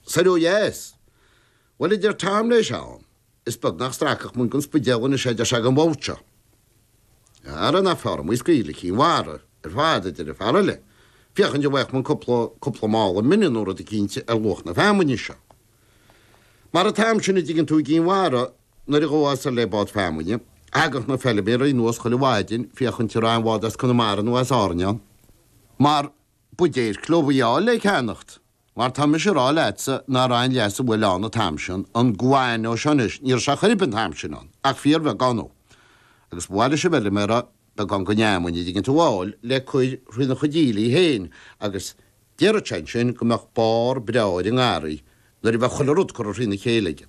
Soir ó dheas? Bhuel, a deir Teamhnéis, ann is beagnach stracach muinc an Spidéal anois é, deir sé, ag an mbád seo. Ara nach fearr muid scaoileadh go Cinn Mhara ar fad, a deir an fear eile, féachaint an bhfaighfeadh muid cúpla, cúpla mála mine nó rud eicínt ar luach na feamainne seo. Mar an t-am sin, a' dtuigeann tú, i gCinn Mhara, nuair a ghabhfá soir le bád feamainne, thagadh na feilméaraí anuas chuile mhaidin féachaint a' raibh aon bhád as Conamara nó as Árainn ann, mar b'fhéidir clóbhuí áille a cheannacht Mar tá mise ag rá leatsa nach raibh aon leasú, bhuel, ann an t-am sin, an guano seo anois, ní raibh sé chor ar bith an t-am sin ann, ach fíorbheagán. Agus ba mhaith leis an bhfeilméara beagán dhon fheamainn, an dtuigeann tú, a fháil, le cur thrína chuid aoiligh féin, agus déarfadh sé ansin go mbeadh barr breá ar an ngarraí, nuair a bheadh chuile rud curtha thrína chéile aige.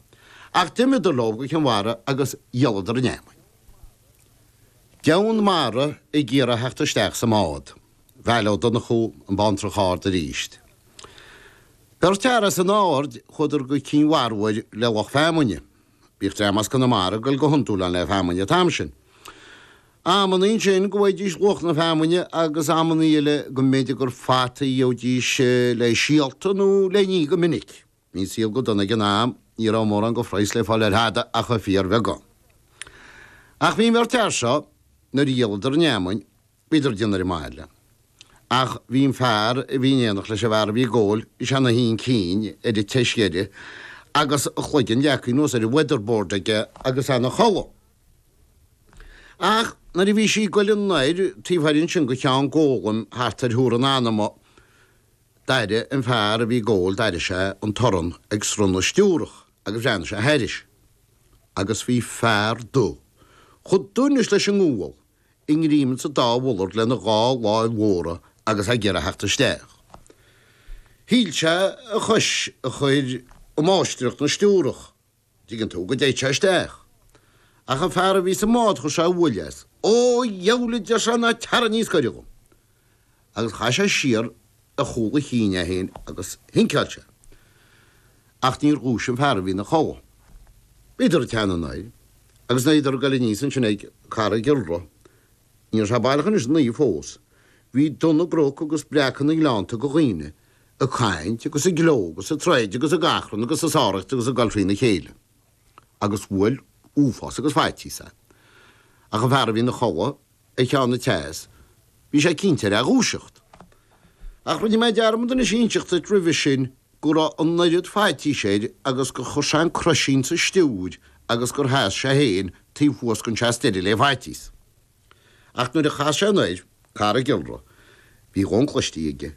Ach d'imíodar leob go Cinn Mhara agus dhíoladar an fheamainn. Deamhan mara ag iarraidh theacht isteach sa mbád. Mícheál Ó Donnchú an Bhantrach Ard arís. Beirt fhear as an Aird, chuadar go Cinn Mhara uair le lucht feamainne. Bhíodh dream as Conamara ag dul go hiondúil ann le feamainn an t-am sin. Amannaí ansin go bhfaighidís luach na feamainne agus amannaí eile go mb'fhéidir gur fataí a gheobhaidís le síolta nó le n-ithe go minic. Bhí an saol go dona ag an am, ní raibh mórán de phraghas le fáil ar thada ach fíorbheagán. Ach bhí an bheirt fhear seo, nuair a dhíoladar an fheamainn, bhíodar ag déanamh ar an mbaile. Ach bhí an fear a bhí in éineacht leis an bhfear a bhí ag gabháil is é ina shuí ansin ar an tseas deiridh agus a chloigeann leagtha anuas ar an weatherboard aige agus é ina chodladh. Ach nuair a bhí sí ag goil anoir taobh thoir ansin de Cheann Gólaim thart ar Thuar an Anama, D'airigh an fear a bhí ag gabháil, d'airigh sé an torann ag sruth na stiúrach agus bhreathnaigh sé thairis. Agus bhí fear dubh, chomh dubh anois leis an ngual, i ngreim insa dá mhullard lena dhá láimh mhóra agus ag iarraidh theacht isteach. Shíl sé a chois a chur i máistreacht na stiúrach. dtigeann tú go dtéadh sé isteach. Ach an fear a bhí sa mbád chuir sé uaill as. Ó dheabhail a deir sé ná teara níos gaire dhom. Agus chaith sé siar ar chúl a chinn é féin agus shinceáil sé. Ach níor dhúisigh an fear a bhí ina chodladh. Bhíodar ag teannadh anall agus bhíodar ag goil aníos ansin ag Carraig Iolra. Ní raibh sé baileach anois ina oíche fós. Bhí dubh na gcnoc agus breacadh na ngleannta de dhaoine ag caint agus ag gleo agus ag troid agus ag achrann agus ag sáraíocht agus ag goil thrína chéile, agus bhuail uafás agus faitíos é. Ach an fear a bhí ina chodladh ar cheann an tseas, bhí sé cinnte air a dhúiseacht. Ach rinne mé dearmad anois inseacht duit roimhe sin go raibh an oiread faitís air agus gur chuir sé an croisín sa stiúir agus gur sheas sé féin taobh thuas den tseas deiridh le faitíos. Ach nuair a chas sé anoir Carraig Iolra, bhí a dhóthain cloiste aige,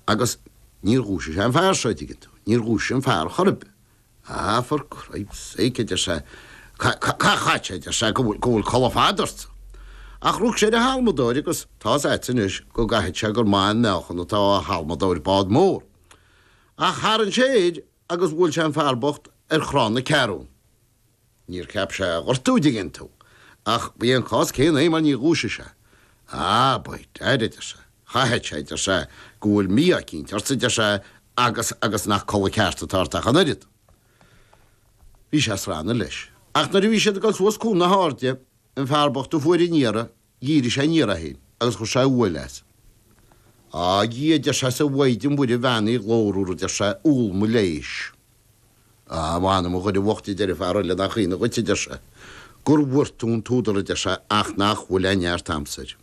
agus níor dhúisigh sé an fear seo, an dtuigeann tú, níor dhúisigh an fear chor ar bith. Ah, for Cripes sake, a deir sé, chaithfeadh, a deir sé, go bhfuil codladh fada ortsa? Ach rug sé ar an halmadóir agus tá's a'tsa anois go gcaithfidh sé gur maith an meáchan atá i halmadóir bád mór. Ach tharraing sé air. agus bhuail sé an fear bocht ar chnámh na ceathrún. Níor cheap sé a ghortú, an dtuigeann tú, ach ba é an cás céanna é mar níor dhúisigh sé. Á, by dad, a deir sé, chaithfeadh sé, a deir sé, go bhfuil mí-ádh eicínt ortsa, a deir sé, agus, agus nach codladh ceart atá ort ach an oiread. Bhí sé ag srannadh leis. Ach nuair a bhí siad ag dul suas Cuan na hAirde, an fear bocht a fuair an iarraidh, Dhírigh sé aniar é féin agus chuir sé uaill as. Á, a Dhia, a deir sé, is a Mhaighdean Mhuire bheannaithe ghlórmhar, a deir sé, úll mo leise. Á, a mh'anam, a dhuine bhoicht, a deir an fear eile, nach ionadh dhuit, a deir sé, go bhfuair tú an t-údar, a deir sé, ach nach bhfuil aon neart a'msa air.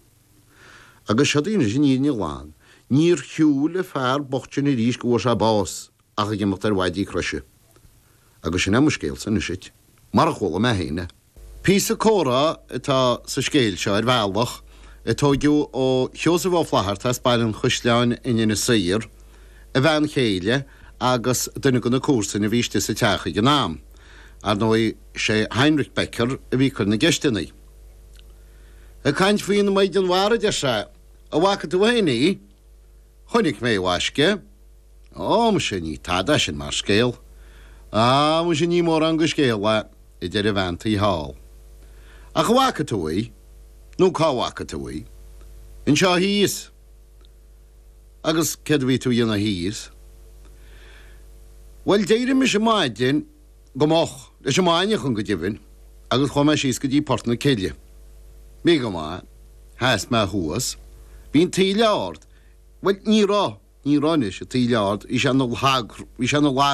Agus seod í anois an fhírinne ghlan, níor shiúil an fear bocht sin arís go bhfuair sé bás ach ag imeacht ar mhaidí croise. Agus sin é mo scéalsa anois duit, mar a chuala mé féin é. Píosa comhrá atá sa scéal seo ar bhealach, a tóigeadh ó Sheosamh Ó Flaithearta as Baile an Chaisleáin in Inis Oírr, a bhean chéile agus duine de na comharsain a bhí istigh sa teach ag an am. Ar ndóigh, sé Heinrich Becker a bhí ag cur na gceisteanna. Ag caint faoin Maighdean Mhara, deir sé, 'An bhfaca tú féin í? 'Chonaic mé, a mhaisce. Ó, muise, ní tada sin mar scéal. Á, muise, ní mórán go scéal é, a deir an bhean tí thall. Ach an bhfaca tú í? Nó cá bhfaca tú í? Anseo thíos. Agus céard a bhí tú a dhéanamh thíos? Bhuel, d'éirigh mise maidin, go moch, leis an maidneachan, go deimhin, agus chuaigh mé síos go dtí Port na Cille. Bhí go maith. Sheas mé thuas. Bhí an taoille ard. Bhuel, ní raibh. Ní raibh, anois, an taoille ard, bhí sé ina lag, bhí sé ina lag.